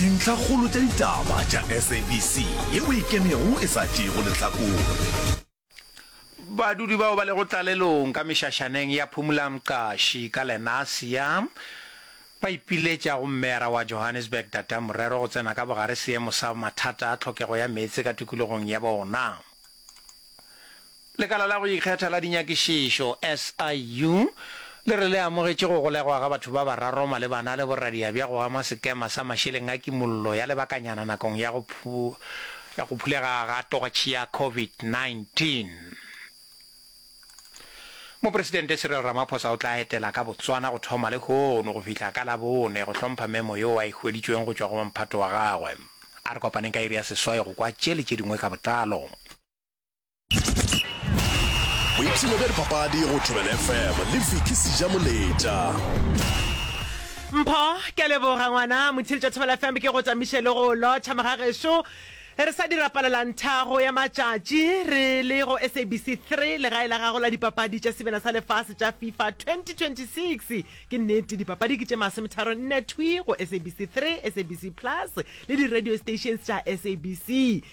Dintlhakgolo tša ditaba tša SABC ye o e kenego e sa tšeego lehlakore. Badudi bao ba lego tlalelong ka mešašaneng ya Phumula-Mqashi ka Lenasia ba ipiletša go Mmeyara wa Johannesburg Dada Morero go tsena ka bogare seemo sa mathata a tlhokego ya meetse ka tikologong ya bona. Lekala la go Ikgetha la Dinyakišišo, SIU, le re le amogetše go golegwa ga batho ba bararo malebana le boradiabja go ama sekema sa mašeleng a kimollo ya lebakanyana nakong ya go ya go phulega ga tortšhe ya COVID-19. Mopresidente Cyril Ramaphosa o tla etela ka Botswana go thoma lehono go fihla ka Labone go hlompha memo yeo a e hweditšweng go tšwa go mphato wa gagwe. A re kopaneng ka iri ya seswai go kwa tše le tše dingwe ka botlalo. boipshino bja dipapadi go tšwebele fm le viki seja moletša mpho ke a leboga ngwana motshedi tša thobela fm ke go tsamiše le go lotšha magagešo re sa dira palelanthago ya matšatši re le go sabc 3 legae la gago la dipapadi tša sebena sa lefase tša fifa 2026 ke nnete dipapadi ke tše masometharo nne thwi go sabc 3 sabc plus le di-radio stations tša sabc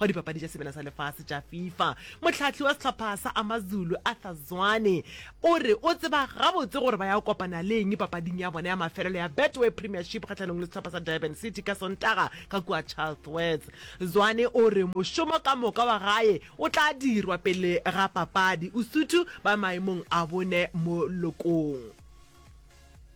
wa dipapadi tša sebele sa lefase tša fifa mohlahli wa sehlopha sa amazulu arthur zwane o re o tseba gabotse gore ba ya kopana le eng papading ya bona ya mafelelo ya betway premiership kgatlhanong le sehlopha sa durban city ka sontaga ka kua charlesworth zwane o re mošomo ka moka wa gae o tla dirwa pele ga papadi usuthu ba maemong a bone mo lokong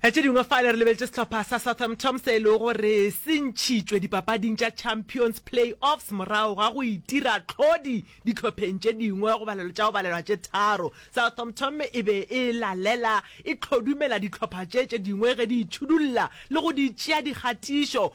Tše dingwe fale re lebeletše sehlopha sa Southamptom se e lego gore se ntšhitšwe dipapading tša Champions Play-offs morago ga go itira tlhodi dihlopheng tše dingwe go balelo tša go balelwa tše tharo. Southamptom e be e lalela e hlodumela dihlopha tše tše dingwe ge di itšhudulla le go di tšea dikgatišo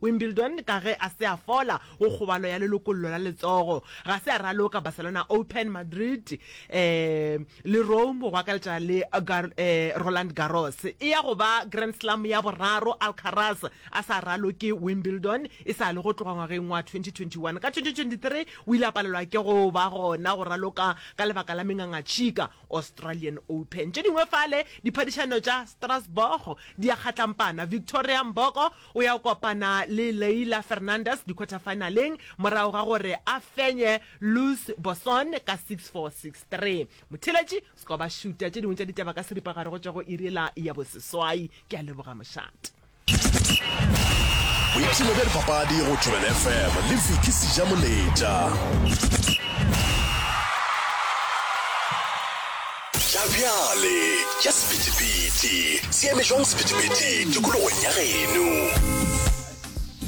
Wimbledon ka ge a se a fola go kgobalo ya lelokollo la letsogo. Ga se a raloka Barcelona Open, Madrid le Rome go akaretša le Roland Garros. E ya go ba Grand Slam ya boraro Alcaraz a sa raloke Wimbledon e sa le go tloga ngwageng wa 2021. Ka 2023 o ile a palelwa ke go ba gona go raloka ka lebaka la mengangatšhika Australian Open. Tše dingwe fale, diphadišano tša Strasbourg di a kgatlampana. Victoria Mboko O ya kopana le Leylah Fernandez dikhwathafaenaleng morago ga gore a fenye Luz Bosson ka six four, six three. Motheeletši Skoba Shuta tše dingwe tša ditaba ka seripagare go tšwa go iri ela ya boseswai. Ke a leboga mošate. Boipshino bja dipapadi go Tšwelele FM le Vicky Sijamoletša. Tša bjale tša sephethephethe, se eme jwang sephethephethe tikologong ya geno?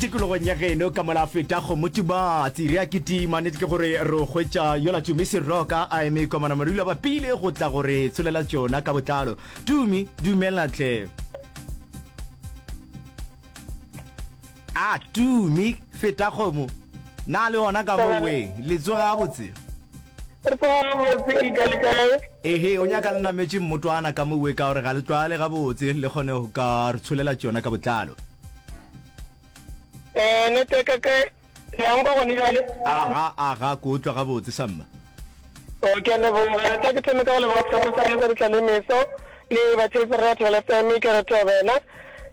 tikologong ya geno ka mola feta go motubatsi re a kitima nete ke gore re o hwetša yola tumi seroka a eme komana morula ba pile go tla gore tsholela tsona ka botlalo tumi dumela tle A two mi feta kgomo na le ona ka mo weng le tsoge ga botse. Re tsoge ga botse e ka le kae. Ehe o nyaka le nametše mmotwana ka mo we ka gore ga le tlwaale ga botse le kgone go ka re tsholela tšona ka botlalo. Eh neteka kae le ya nkwa gone jale. Aga aga ko utlwa ga botse sa mma. O ke a leboga. Tla ke thome ka go leboga sehlopha sa rena sa ditlalemeso le batsheetsi ba rena ba Thobela FM. Ke re Thobela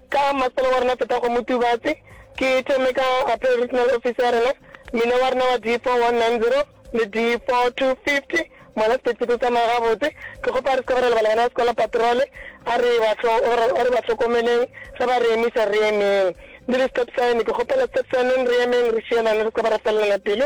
ka mmasepala wa rena Fethago Motubatse. Ke thome ka Appeal Regional Office ya rena, mmina wa rena wa D4190 le D4250. Mola sephethephethe o tsamaya gabotse. Ke kgopa re se ke ra lebala bana ba sekolo patrole. A re ba a re ba hlokomeleng ge ba re emisa re emeng. Le di-stop sign ke kgopela stop sign re emeng re šielane re se ke ba ra felelana pelo.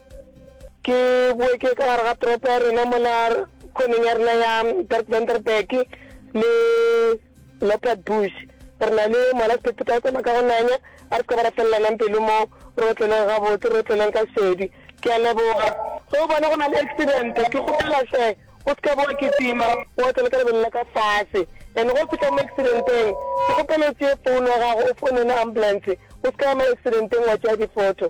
ke boe ke ka gare ga toropo ya rena mola khoneng ya rena ya bertvenderberg le leopard bush re na le mola sephetho ka tsena ka go nanya a re se ka ba ra felelanang pelo mo re otleleng gabotse re otleleng ka sedi ke a leboga ge o bona go na le accident ke kgopela hle o se ka boa ke tima o otlele ka lebelo la ka fase and go fitlha mo accidenteng ke kgopela o tseye founu ya gago o founele ambulance o se ka ya mo accidenteng wa tšea diphoto